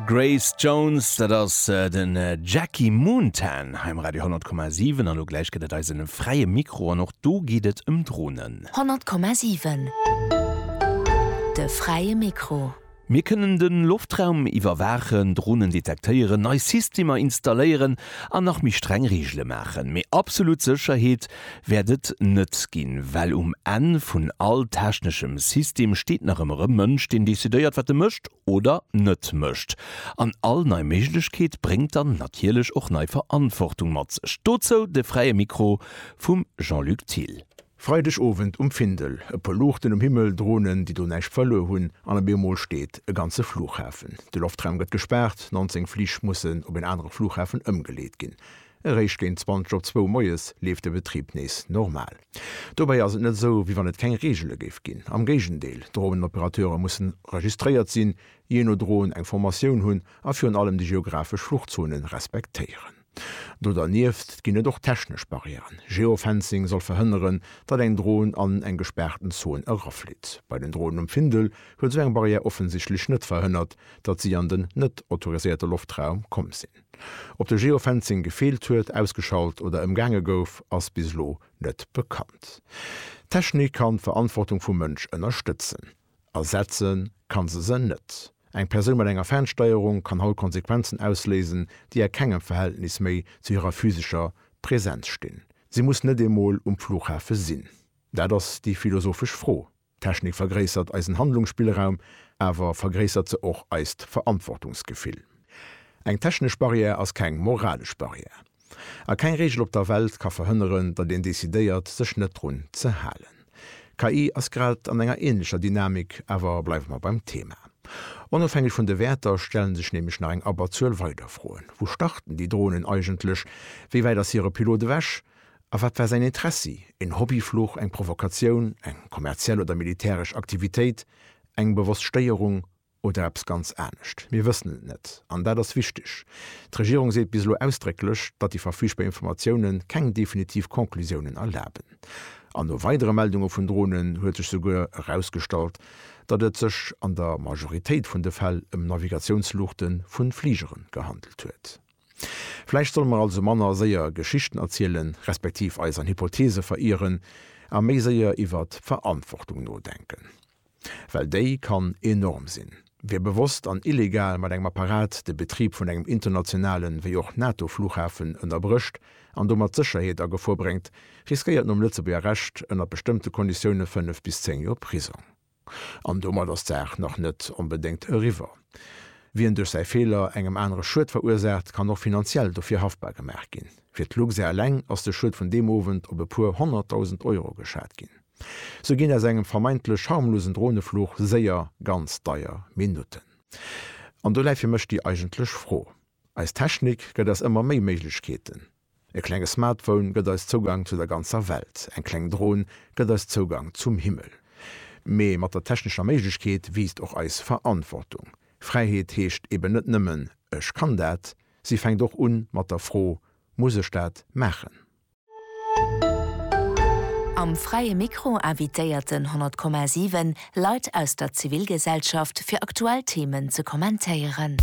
Grace Jones, dat ass den Jackie Moontan hei um Radio 10,7. An elo gläich gëtt et eisen fräie Mikro an och do geet et ëm Dronen. 10,7 De fräie Mikro. Mir kënnen de Loftraum iwwerwaachen, Dronen detektéieren, nei Systemer installéieren an nach méi streng Reegele maachen. Mee absolut Sécherheet wäert et net ginn, well um Enn vun all techneschem System steet nach ëmmer e Mënsch, deen decidéiert, wat e mécht oder net mécht. An all nei Méiglechkeet bréngt dann natierlech och nei Verantwortung mat sech. Dozou de Fräie Mikro vum Jean-Luc Thill. Freideg Owend um Findel, e puer Luuchten um Himmel, Dronen, déi do näischt verluer hunn, an op eemol steet e ganze Flughafen. De Loftraum gëtt gespaart, 19 Flich mussen op een anere Flughafen ëmgeleet ginn. Eréischt géint 20 op zwou moies leeft de Betrib nees normal. Dobäi ass et net esou, wéi wann et keng Reegele géif ginn. Am Géigendeel, Droneoperateure mussen registréiert sinn, jee no Drohn eng Formatioun hunn a virun allem déi geografesch Fluchzone respektéieren. Do dernieft ginn et och technesch Barrièren. Geofencing soll verhënneren, datt eng Drohn an eng gespaarten Zon eraflitt. Bei den Dronen um Findel huet esou eng Barrière offensichtlech net verhënnert, datt si an den net autoriséierte Loftraum komm sinn. Ob de Geofencing gefeelt huet, ausgeschalt oder ëmgaange gouf, ass bis elo net bekannt. D'Technik kann d'Verantwortung vum Mënsch ënnerstëtzen. Ersetze kann se se net. Eng Persoun mat enger Fernsteierung kann haut Konsequenzen ausléisen, déi a kengem Verhältnis méi zu hirer physescher Präsenz stinn. Si muss net eemol um Flughafe sinn. Dat ass déi philosophesch Fro. D'Technik vergréissert eisen Handlungsspillraum, awer vergréissert se och eist Verantwortungsgefill? Eng technesch Barrière ass keng moralesch Barrière. A keng Reegel op der Welt ka verhënneren, datt een decidéiert, sech net drun ze halen. KI ass grad an enger änlecher Dynamik, awer bleiwe mer beim Thema. Onofhängeg vun de Wäerter stelle sech nämlech nach eng Abberzuel weider Froen. Wou starten déi Dronen eigentlech? Wéi wäit ass hire Pilot ewech? A wat war säin Intressi? Een Hobbyfluch, eng Provokatioun, eng kommerziell oder militäresch Aktivitéit, eng bewosst Stéierung oder eppes ganz anescht? Mir wëssen et net, an dat ass wichteg. D'Regierung seet bis elo ausdrécklech, datt déi verfügbar Informatioune keng definitiv Conclusiounen erlaben. An no weidere Meldunge vun Dronen huet sech souguer erausgestallt, datt et sech an der Majoritéit vun de Fäll ëm Navigatiounsluuchte vu Fligere gehandelt huet. Vläicht solle mer also manner séier Geschichten erzielen, respektiv eis an Hypotheese verieren, a méi séier iwwert d'Verantwortung nodenken. Well déi kann enorm sinn. Wie bewosst an illegal mat engem Apparat de Betrib vun engem internationalen, wéi och NATO-Flughafen ënnerbrécht an domat d'Sécherheet a Gefor bréngt, riskéiert nom Lëtzebuerger Recht ënner bestëmmte Konditioune 5 bis 10 Joer Prisong. An domat ass d'Saach nach net onbedéngt eriwwer. Wien duerch säi Feeler engem anere Schued verursaacht, kann och finanziell dofir haftbar gemaach ginn. Fir d'Luxair eleng ass de Schued vun deem Owend op e puer honnertdausend Euro geschat ginn. Sou ginn aus engem vermeintlech harmlosen Dronefluch séier ganz deier Minutten. An do läit fir mech déi eigentlech Fro. Eis Technik gëtt eis ëmmer méi Méiglechkeeten. E klenge Smartphone gëtt eis Zougang zu der ganzer Welt, eng kleng Dron gëtt eis Zougang zum Himmel. Mee mat der technescher Méiglechkeet wiisst och eis Verantwortung. Fräiheet heescht eben net nëmmen, Ech kann dat. Si fänkt och un mat der Fro, Muss ech dat maachen? Am Fräie Mikro invitéiert den 100,7 Leit aus der Zivilgesellschaft fir aktuell Themen ze kommentéieren.